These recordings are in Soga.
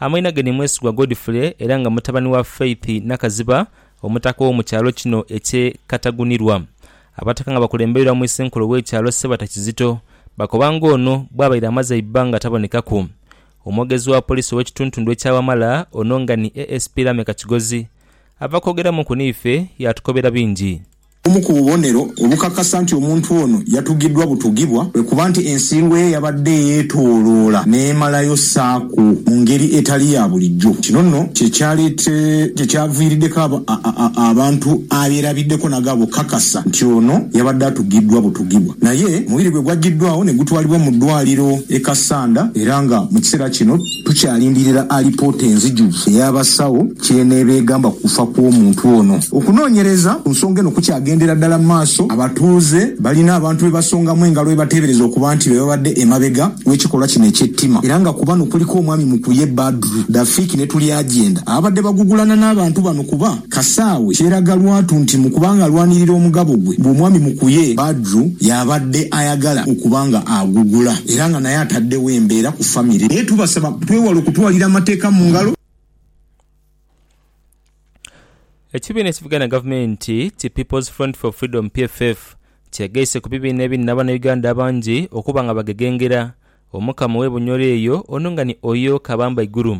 Amainhage ni mwesigwa Godfrey era nga mutabani wa Faith Nakaziba omutaka ow'omu kyalo kino eky'e Katagunirwa. Abataka nga bakulembeirwa mu Isenkulu w'ekyalo Ssebata Kizito bakoba ng'ono bwabaire amaze eibbanga tabonekaku. Omwogezi wa poliisi ow'ekituntundu ekya Wamala ono nga ni ASP Lameck Kigozi ava kwogeramuku n'ife yaatukobera bingi. Obumu ku bubonero obukakasa nti omuntu ono yatugidwa butugibwa kwe kuba nti ensiirwa ye yabadde yeetooloola n'emalayo saako mu ngeri etali ya bulijjo. Kino nno kye kyalete kye kyaviiriddeko aba, a, a, a, abantu abeerabiddeko naga bukakasa nti ono yabadde atugidwa butugibwa. Naye omubiri gwe gwajjiddwaawo ne gutwalibwa mu ddwaaliro e Kassanda era nga mu kiseera kino. Tukyalindirira alipoota enzijuvu ey'abasawo ky'eneeba egamba ku kufa kw'omuntu ono. Okunoonyereza ku nsonga eno kukyagendera dala mu maaso, abatuuze balina abantu be basongamu engalo be bateebereza okuba nti be babadde emabega w'ekikolwa kino eky'ettima era nga ku bano kuliko omwami Mukuye Badru, Dafiki ne Tulyagyenda ababadde bagugulana n'abantu bano kuba Kasaawe kyeraga lwatu nti mu kuba nga alwanirira omugabo gwe ng'omwami mukuye, Badru y'abadde ayagala okuba nga agugula era nga naye ataddewo embeera ku famire. Naye tubasaba twewale okutwalira amateeka mu ngalo. Ekibiina ekivuganya na gavumenti ki People's Front for Freedom, PFF, kyegaise ku bibiina ebiri n'abanauganda abangi okuba nga bagegengera Omukama ow'e Bunyoro eyo ono nga ni Oyo Kabamba Iguru.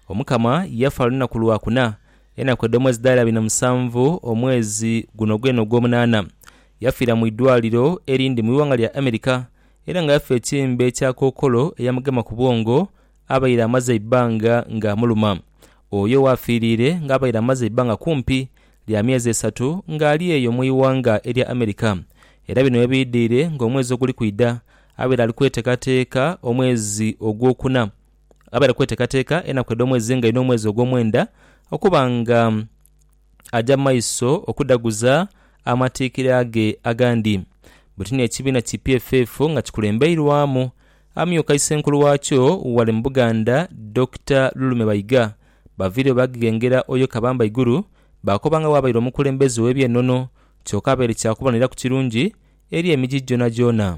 Omukama yafa lunaku Lwakuna Enaku edh'omwezi dhaali abiri na musanvu, omwezi guno gwene ogw'omunaana. Yafiira mu idwaaliro erindi mu ighanga lya America era nga yafa ekimbe kya kookolo eyamugema ku bwongo abaire amaze eibbanga nga amuluma. Oyo ghaafiiriire ng'abaire amaze eibbanga kumpi lya myezi esatu ng'ali eyo mu ighanga erya America era bino yabiidhiire ng'omwezi oguli kwidha abaire ali kweteekateeka omwezi ogwokuna. abaire kweteekateeka enaku edh'omwezi nga inho omwezi ogw'omwenda okuba nga aja mu maiso okudhaguza amatiikira ge agandi. Buti n'ekibiina ki PFF nga kikulembeirwamu amyuka isenkulu waakyo ghale mu Buganda, Dokita Lulume Bayiga, baviireyo baageghengera Oyo Kabamba Iguru baakoba nga bw'abaire omukulembeze ow'eby'enono kyoka abaire kya kuboneraku kirungi eri emiji gyonagyona.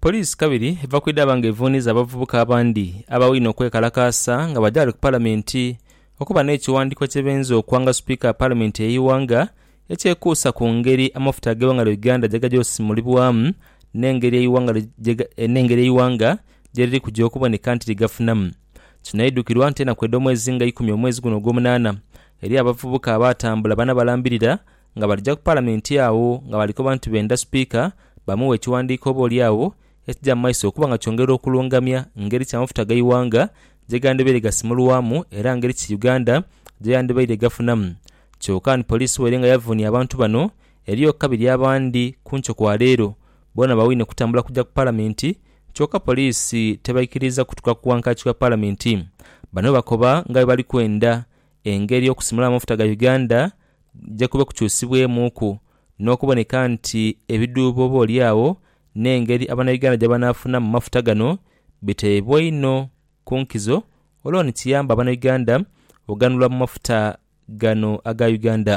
Poliisi kabiri eva kwidhaaba nga evuuniza abavubuka abandi abawaine okwekalakaasa nga baja ghale ku palamenti okuba n'ekiwandiiko kyebenza okwanga sipiika wa palamenti ey'eighanga ekyekuusa ku ngeri amafuta ag'eighanga lya Uganda gyegaja osimulibwamu n'engeri eighanga n'engeri eighanga gyeriri kuja okuboneka nti ligafunamu. Kino aidukirwa nti enaku edh'omwezi nga ikumi omwezi guno ogwomunaana eriyo abavubuka abaatambula bana balambirira nga balija ku Palamenti agho nga bali koba nti benda Sipiika bamughe ekiwandiiko oboolyawo ekija mu maiso okuba nga kyongera okulungamya ngeri ki amafuta ga Iwanga gye gandibaire gasimulwamu era ngeri ki Uganda gye yandibaire egafunamu kyoka ni Poliisi waire nga yavuunia abantu bano eriyo ku kabiri abandi ku nkyo kwa leero boona bawaine kutambula kuja ku Palamenti kyoka Poliisi tebaikiriiza kutuka ku wankaaki wa Palamenti. Bano bakoba nga bwe bali kwenda engeri okusimulamu amafuta ga Uganda kuja kube kukyusibwemuuku n'okuboneka nti ebidhuubo oboolyawo n'engeri Abanauganda gye banaafunamu mu mafuta gano biteebwa inho ku nkizo olwo ni kiyambe Abanauganda oghanulwa mu mafuta gano aga Uganda.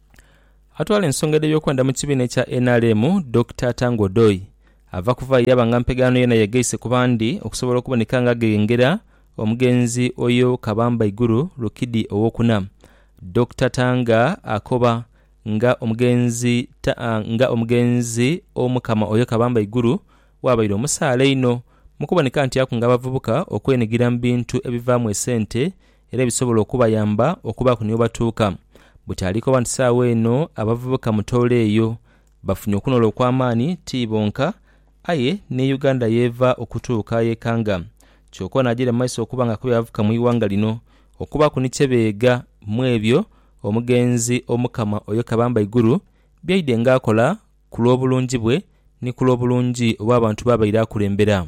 Atwala ensonga dh'ebyokwenda mu kibiina ekya nrm, Dokita Tanga Odoi, ava kuvaayo yaba nga mpegaano yoona yegaise ku bandi okusobola okuboneka nga aghengera omugenzi oyo Kabamba Iguru Rukidi owokuna. Dokita Tanga akoba nga omugenzi nga omugenzi Omukama oyo Kabamba Iguru waabaire omusaale einho mukuboneka nti akunga abavubuka okwenigira mu bintu ebivaamu esente era ebisobola okubayamba okubaaku ni webatuuka. Butaalika oba nti saagho eno abavubuka mu Tooro eyo bafunye okunoola okw'amaani ti bonka aye ni Uganda y'eva okutuuka ayekanga kyoka ono ajaire mu maiso okuba nga akubye abavubuka mu ighanga lino okubaaku ni kyebeega mw'ebyo omugenzi Omukama Oyo Kabamba Iguru byaidhe nga akola ku lw'obulungi bwe ni ku lw'obulungi obw'abantu b'abaire akulembera.